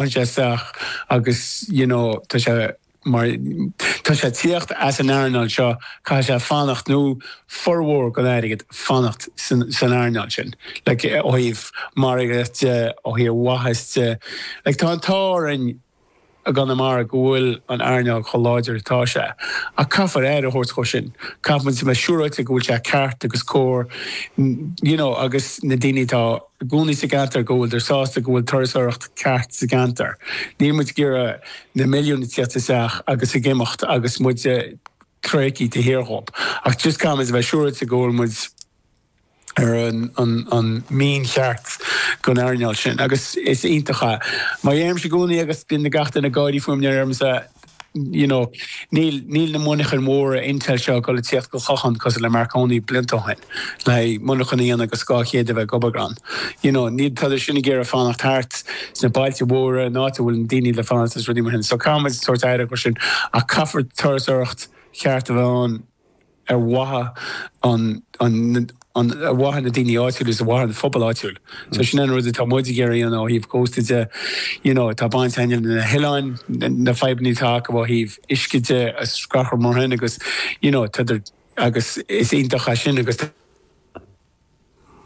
Majestic agus you know tá sé má tá sé tíocht as an earnáil seo caithfidh sé fanacht nó formhór gon airgead fanacht san san earnáil sin like ó thaobh margaíocht de ó thaobh maitheas de like tá an t-ádh orainn i gConamara go bhfuil an earnáil chomh láidir atá sé ach caithfear aire a thabhairt dhó sin caithfidh muid a bheith siúráilte go bhfuil sé ceart agus cóir you know agus na daoine atá Ina gcónaí sa gceantar go bhfuileadar sásta go bhfuil turasóireacht ceart sa gceantar, níl muid ag iarraidh na milliúin a thíocht isteach agus ag imeacht agus muid ag tréiceáil tae siar dhóib, ach just caithfidh muid a bheith siúráilte go bhfuil muid ar an mianach ceart gon earnáil sin. Agus is iontach é. Mar a deirimse i gcónaí agus bíonn gach duine ag gáirí fúm nuair a deirimse You know níl na monarchain mhóra Intel seo ag dul ag tíocht go Clochán cosúil le Marconi blianta ó shin le monarchan a dhéanamh go dhá chéad a bheith ag obair ann. You know tádar sin ag iarraidh fanacht thart sna bailte mhóra, in áit a bhfuil na daoine le fanacht agus rudaí mar sin. So caithfidh muid tabhairt aire dhó sin ach caithfear turasóireacht cheart a bheith ann. ar mhaithe an an ar mhaithe na daoine áitiúil is ar mhaithe an phobail áitiúil. So sin an rud atá muid ag iarraidh a dhéanamh ó thaobh Cósta de. You know tá baint againn leis na hoileáin, na fadhbanna atá acu ó thaobh uisce de is gach rud mar sin agus you know tádar agus is iontach é sin agus tá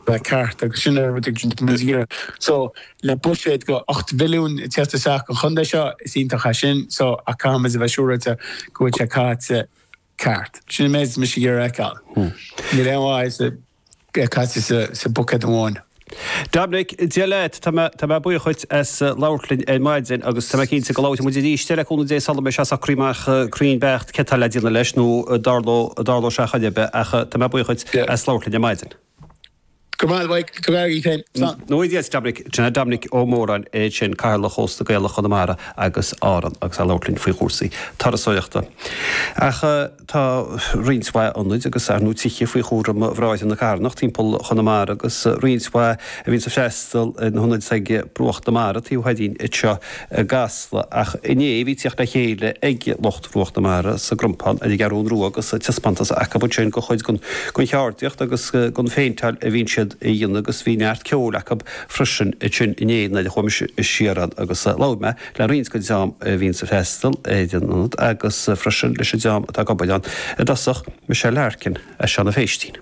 le ceart agus sin é rud a dhéanann Ziera so le buiséad go 8 milliún ag tíocht isteach sa gcontae seo is iontach é sin so ach caithfidh muid a bheith siúráilte go bhfuil sé caite ceart. Sin an méid atá mise ag iarraidh a fheiceáil. Níl aon mhaith is a bheith caite sa mbuicéad amháin. Dominic, Dia leat, tá mé, tá mé buíoch dhuit as labhairt linn ar maidin agus tá mé cinnte go labhróidh muid arís leat le cúnamh Dé sula mbeidh sé socraithe amach cruinn beacht. cad tá le déanamh leis nó an dtarlóidh sé ar chaoi ar bith ach tá mé buíoch dhuit as labhairt linn ar maidin. Go maith Mhaidhc, go mb'fhearr é féin. Slán. Nára Dia is Dominic, sin é Dominic Ó Móráin ansin, Cathaoirleach Chósta Gaelach Chonamara agus Árann agus é ag labhairt linn faoi chúrsaí turasóireachta. Ach tá roinnt mhaith ionad agus, ar ndóigh, tithe faoi chúram Bhráithre na Carthanach timpeall Chonamara agus roinnt mhaith a bhíonns ag freastal ar na hionaid ag Bruach na Mara, taobh thoir dínn anseo. i gCasla, ach inné bhí teacht le chéile ag lucht Bhruach na Mara sa gCrompán ar an gCeathrú Rua agus taispeántas acu ansin go chuid den cheardaíocht agus den phéinteáil a bhíonn siad a dhéanamh agus bhí neart ceoil acu freisin ansin inné nuair a chuaigh mise siar ann agus labhair mé le roinnt den dream a bhíonns ag freastal ar an ionad agus freisin leis an dream atá ag obair ann i dtosach Michelle Larkin as Seanadh Phéistín.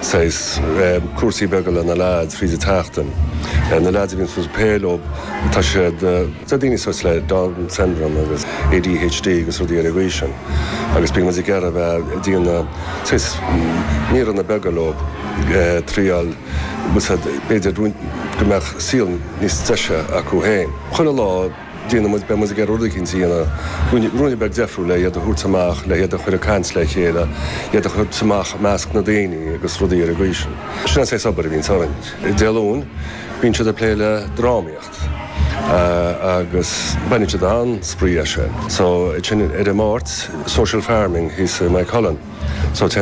Saghas cúrsaí beaga le na lads i rith na seachtaine. Na lads a bhíonn ag spé leob, tá siad, tá daoine sórt le Down syndrome agus ADHD agus rudaí ar an gcaoi sin agus bíonn muid ag iarraidh a bheith ag déanamh saghas míreanna beaga leob ag triail as go b'fhéidir go mbeadh saol níos deise acu féin. Chuile lá. déanfaidh muid, beidh muid ag iarraidh rud éicint a dhéanamh, rud a bheadh difriúil le iad a thabhairt amach, le hiad a chur ag caint le chéile, iad a chur amach i measc na daoine agus rudaí ar an gcaoi sin. Sin an saghas obair a bhíonns orainn. Dé Luain, bíonn siad ag plé le drámaíocht agus baineann siad an-spraoi as sin. So, ansin ar an Máirt, social farming thíos i Maigh Cuilinn. So, téann muid